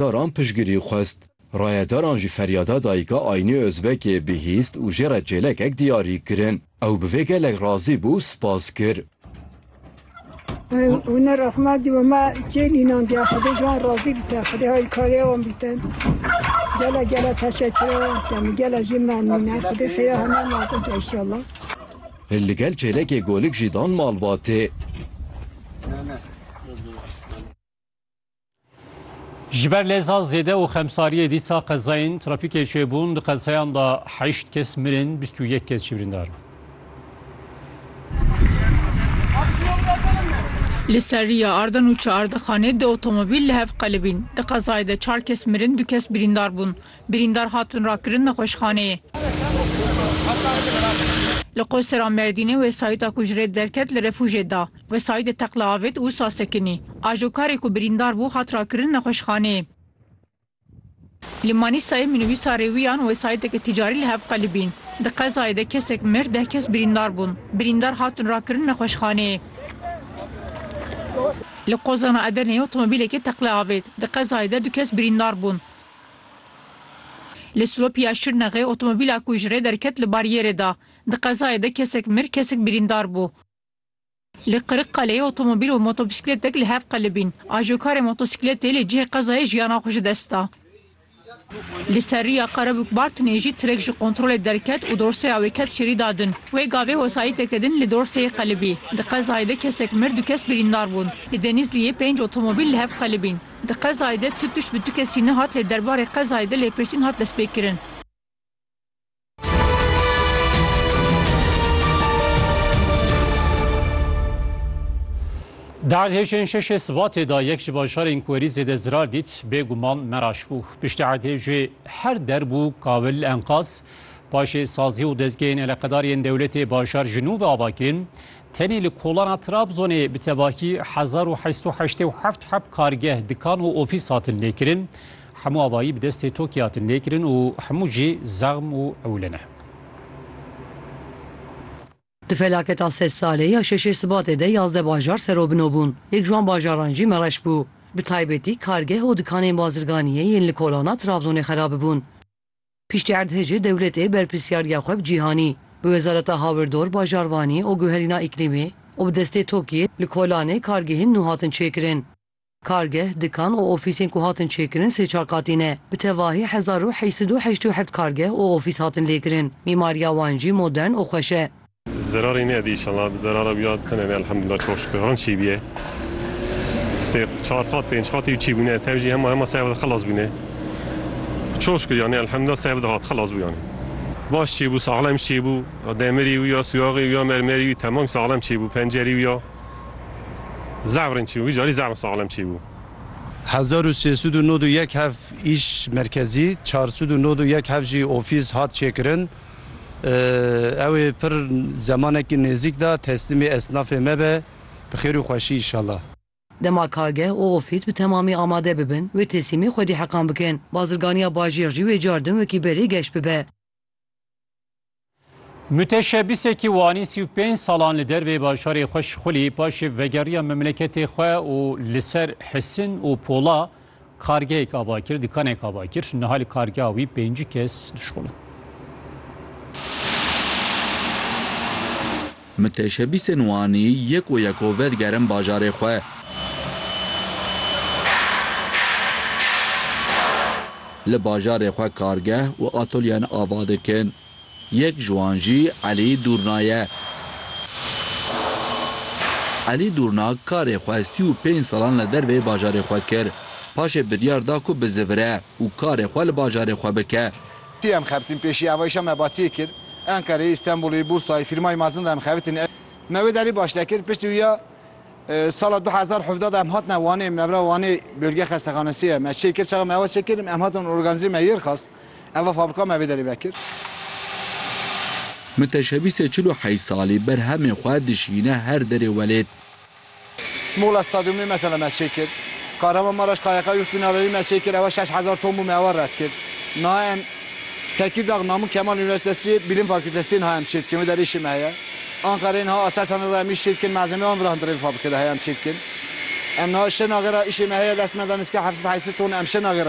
Daran piştgirî xwest. Rayedaran ji feryada dayika Aynî Ozbekê bihîst û jê re çêlekek diyarî kirin. Ew bi vê gelek razî bû û spas kir. Hûna rexma dî û me çêlînan diya Xwedê ji wan razî bite, Xwedê hayîrkariya wan bite. Gele gele teşekkira wan dikim û gele jî memnûne. Xwedê xêra heme nasib ke înşallah. Li gel çêlekê golik jî dan malbatê. Ji ber lêza zêde û xemsariyê dîsa qezayên trafîkê çêbûn di qezayan de heşt kes mirin, bîst û yek kes jî birîndar bûn. Li Serriya Ardan û Çeardexanê du otomobîl li hev qelibîn. Di qezayê de çar kes mirin, du kes birîndar bûn. Birîndar hatin rakirin nexweşxaneyê. Li Qosera Mêrdînê wesayîta ku ji rê derket li refûjê da. Wê Saîdê teqla avêt û wisa sekinî. Ajokarê ku birîndar bû hat rakirin nexweşxaneyê. Li Manîsayê minibîsa rêwiyan wê Saîdeke tîcarî li hev qelibîn. Di qezayê de kesek mir, deh kes birîndar bûn. Birîndar hatin rakirin nexweşxaneyê. Li Qozana Edeneyê otomobîlekê teqla avêt. Di qezayê de du kes birîndar bûn. Li Silopiya Şirnexê otomobîla ku ji rê derket li baryêrê da. Di qezayê de kesek mir, kesek birîndar bû. Li Qiriqaleyê otomobîl û motobîsikletek li hev qelibîn. Ajokarê motosîkletê li cihê qezayê jiyana xwe ji dest da. Li ser rîya Qerebûk Bartinê jî tirek ji kontrolê derket û dorseya wê ket şêrî da din. Wê gavê wesayîteke din li dorseyê qelibî. Di qezayê de kesek mir du kes birîndar bûn. Li Denîzliyê pênc otomobîl li hev qelibîn. Di qezayê de tu tişt bi tu kesî nehat lê derbarê qezayê de lêpirsîn hat destpêkirin. Di erdhêjên şeşê Sibatê de yek ji bajarên ku herî zêde zirar dît bêguman Meraş bû. Piştî erdhêjê her derbû kawil enqaz, paşê sazî û dezgehên eleqedariyên dewletê bajar ji nû ve ava kirin. Tenê li kolana Trabzonê bi tevahî hezar û heşt û heştê û heft heb kargeh, dikan û ofîs hatin lêkirin. Hemû avayî bi destê TOKî hatin lêkirin û hemû jî zexm û ewle ne. Di felaketa sed salê ya şeşê Sibatê de yazdeh bajar serobino bûn. Yek ji wan bajaran jî Mereş bû. Bi taybetî kargeh û dikanên bazirganiyê yên li kolana Trabzonê xerabibûn. Piştî erdhejê dewletê berpirsiyariya xwe bi cîhanî, bi wezareta hawirdor, bajarvanî û guherîna îklîmî û bi destê TOKI'yê li Kolanê kargehên nû hatin çêkirin. Kargeh, dikan û ofîsên ku hatin çêkirin sê çar qatî ne. Bi tevahî hezar û heyşt sed û heşt û heft kargeh û ofîs hatin lêkirin. Mîmariya wan jî modern û xweş e. Zerarê me dî inşallah zerara wî ya tune ne elhamdullah çok şükür han çîbîye. Sê çar qat pênc qatî û çî bûne tev jî hema hema sey wexte xilas bûne. Çok şükür yanî elhamdullah sey wexte hat xilas bû yanî. Baş çîbû saxlem çîbû demirî wî ya sûyaxê wî ya mermerî wî temam saxlem çîbû pencerî wî ya zevrin çîbû vîcarî zevrin saxlem çîbû. Hezar û sê sed û nod û yek hev îş merkezî, çar sed û nod û yek hev jî ofîs hat çêkirin. Ew ê pir zemanekî nêzîk de teslîmê esnafê me be. Bi xêr û xweşî înşallah. Dema kargeh û ofîs bi temamî amade bibin, wê teslîmê xwedî heqan bikin. Bazirganiya bajêr jî wê car din wekî berê geş bibe. Mûteşebîsekî Wanî sî û pênc salan li dervê bajarê xwe şixulî, paşê vegeriya memleketê xwe û li ser Hisin û Pola Kargeyek ava kir, dikanek ava kir, niha li kargeha wî pêncî kes dişkolin. Miteşebîsên Wanî yeko yeko vedigerin bajarê xwe. Li bajarê xwe kargeh û atolyeyan ava dikin. Yek ji wan jî Elî Dûrna ye. Elî Dûrna karê xwe sî û pênc salan li derveyê bajarê xwe kir. Paşê biryar da ku bizivire û karê xwe li bajarê xwe bike. Ti em xebitîn pêşî eva îşa me batiyê kir. Enqereyê, Îstenbulê, Bûrsayê, fîrmayê mezin de em xebitîn. Me wê derî baş nekir. Piştî wî ya sala du hezar û hevdeh de em hatine Wanê. Mevra Wanê bölge xestexanesê ye. Me çêkir çaxa me eva çêkir em hatin organzê me yêr xwest. Eva fabrika me vê derê vekir. Min teşebîsê çil û heyş salî ber hemê xwe dişîne her derê welêt. Muxla stadyumê mesela me çê kir. Kahramanmaraş KYK Youth Binalerî me çê kir ewa şeş hezar ton bû me ewa red kir. Niha em Tekîrdag Namûk Kemal Unîversîtesî Bîlim Fakûltesî niha em çê dikin vê derê îşê me heye. Anqereyê niha Aselsanê re em îş çê dikin malzemeyê wan virahindirê vê fabrikê de heye em çê dikin. Em niha şenagera îşê me heye destmenda nizika heft sed heyş sed ton em şenagera